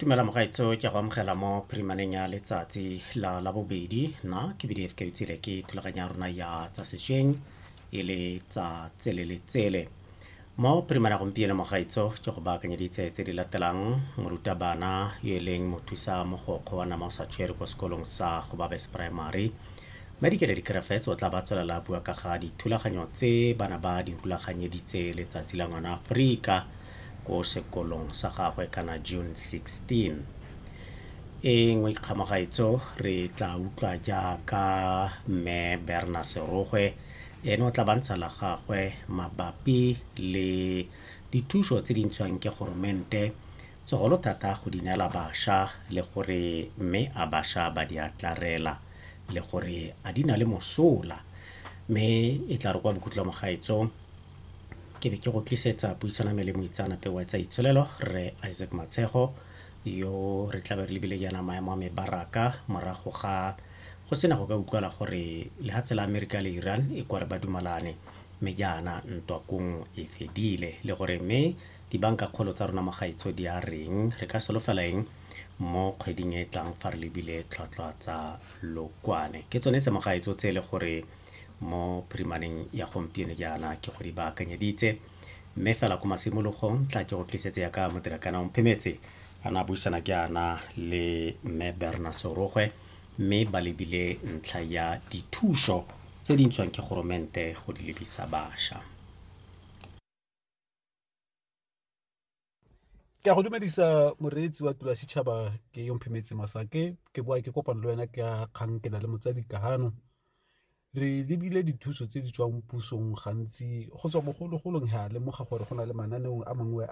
tumela mogaetso ke go amogela mo phirimaneng ya letsatsi la la bobedi nna ke bdf ke utsile ke thulaganya rona ya tsa sešweng e le tsa tsele le tsele mo phirimaneng ya gompieno mogaetso ke go baakanyeditse tse di latelang morutabana yo e leng mothusa mogokgo wa nama o sa tshwere kwa sekolong sa go babes primary medikele dikerefetse o tla ba tswelela bua ka ga dithulaganyo tse bana ba di rulaganyeditse letsatsi la ngwana aforika ko sekolong sa gagwe kana June 16. E nngwe kgamagaetso re tla utlwa jaaka mme Berna Serogwe ene o tla bantsha la gagwe mabapi le dithuso tse di ntshwang ke goromente segolo thata go di neela basha le gore mme a basha ba di atlarela le gore a di na le mosola mme e tla re kwa bokhutlong gaetso ke be ke go tlisetsa puisano me le moitseanape wa tsa itsholelo rre isaac matshego yo re tlabe re lebile yana maemo a mebaraka morago ga go sena go ka utlwala gore lehatshe la amerika le iran e kware ba dumalane mme jaana ntwa kong e fedile le gore mme dibanka kgolo tsa rona mogaitsho di a reng re ka solofela eng mo kgweding e e tlang fa re lebile tlhwatlhwa tsa lokwane ke tsone tse mogaitso tse e le gore mo primaring ya gompieno jaana ke go di baakanyeditse mme fela ko masimologong tla ke go tlisetse ya ka modirakana omphemetse a na buisana jaana le mme berna sorogwe mme ba lebile ntlha ya dithuso tse di ntshwang ke goromente go di lebisa bašwa ke a go dumedisa moreetsi wa tula setšhaba ke yo mphemetse masake ke boa ke kopano le wena ke a kgang ke na le motsadi kahano re lebile dithuso tse di tswang pusong gantsi go tswa bogologolong ga lemoga gore go na le mananeong a mangwe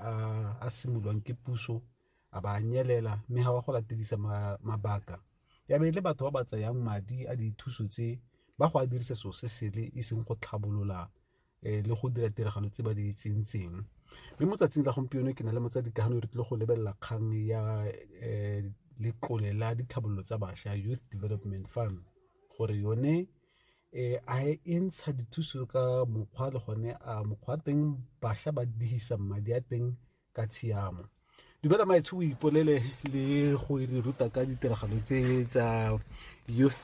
a simolwang ke puso a ba nyelela mme ga wa go latedisa mabaka ya be le batho ba ba tsayang madi a dithuso tse ba go a dirisa seo se sele e seng go tlhabolola um le go dira tiragalo tse ba di tsentseng mme mo tsatsing la gompieno ke na le motsadi ka gano re tlile go lebelela kgang ya um letlole la ditlhabololo tsa bašwa youth development fund gore yone um a e ntsha dithuso ka mokgwa le gone a mokgwa teng bašwa ba dihisa madi a teng ka tshiamo dumela maitsho o ipolele le go re ruta ka ditiragalo tse tsa youth